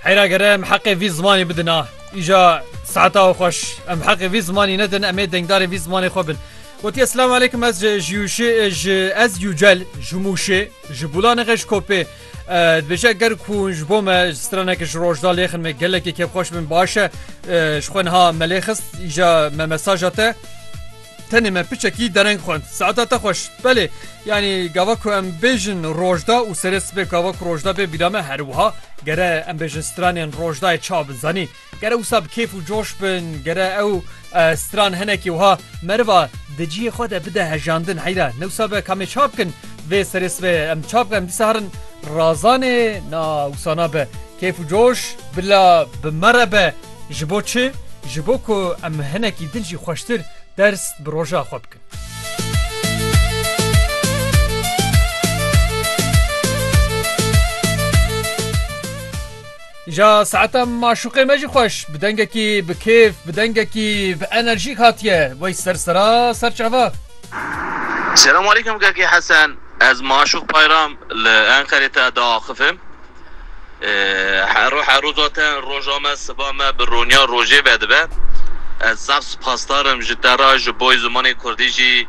Heyra gere em heqê vî zimanê bidina. Îja saeta xweş em heqê vî zimanî nedin emê dengdarê vî zimanê xwe bin. Wotî eslam aleykum ez jiyûşê ji ez yûcel ji mûşê ji bûla nexeş kopê dibêje ger ku ji bo me straneke ji rojda lêxin me gelekê kevxweş bin baş e ji xwe niha me lê xist îja me mesaja te Tenê me piçekî dereng xwend. Saeta te xweş. Belê, yanî gava ku em bêjin rojda û serê sibê gava ku rojda bê bîra me her wiha, gere em bêjin stranên rojdayê çawa bin zanî. Gere wisa bi kêf û coş bin, gere ew stran hinekî wiha meriva di cihê xwe de bide hejandin. Heyra, ne wisa be kamê ça bikin vê serê sibê em ça bikin em dîsa herin razanê na wisa nabe kêf û coş bila bi me re be. Ji bo çi? Ji bo ku em hinekî din jî xweştir ders bi roja xwe bikin. Ja saeta maşuqê me jî xweş bi dengekî bi kêf bi dengekî bi enerjîk hatiye wey ser sera ser çava. Selam aleyküm Kekê Hesen. Ez Maşuk Payram li Enqerê te diaxivim. Hero hero zaten roja me, siba me bi roniya rojê vedibe. Ez zaf sipasdar im ji te re, ji boy zimanê kurdî jî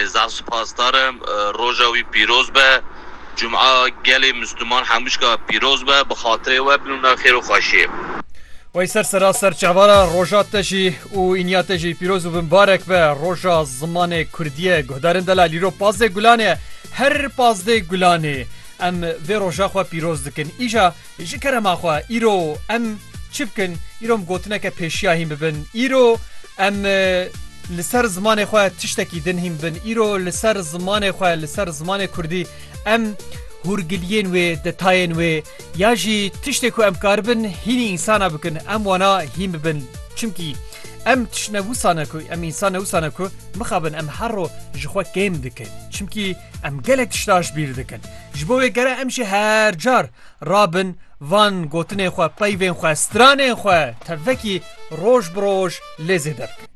zaf sipasdar im. Roja wî pîroz be. Cuma gelê Misliman hemûşka pîroz be. Bi xatirê we bin û na xêr û xweşiyê. Wey ser sera ser çavara roja te jî û îniya te jî pîroz û binbarek be. Roja zimanê kurdî ye. Guhdarên Delal îro pazdeh gulanê ye. Her pazdeh gulanê. Em vê roja xwe pîroz dikin. Îja ji kerema xwe îro em çi bikin? Îro em gotineke pêşiya hîn bibin. Îro em li ser zimanê xwe tiştekî din hîn bibin. Îro li ser zimanê xwe li ser zimanê Kurdî em hûrgiliyên wê, detayên wê ya jî tiştê ku em karibin hînî însana bikin em wana hîn bibin. Çimkî em tişt ne wisane ku em însane wisane ku mixabin em her ro ji xwe kêm dikin. Çimkî Em gelek tişta ji bîr dikin. Ji bo wê gere em jî her car rabin van gotinên xwe, peyvên xwe, stranên xwe tevekî roj bi roj lê zêde bikin.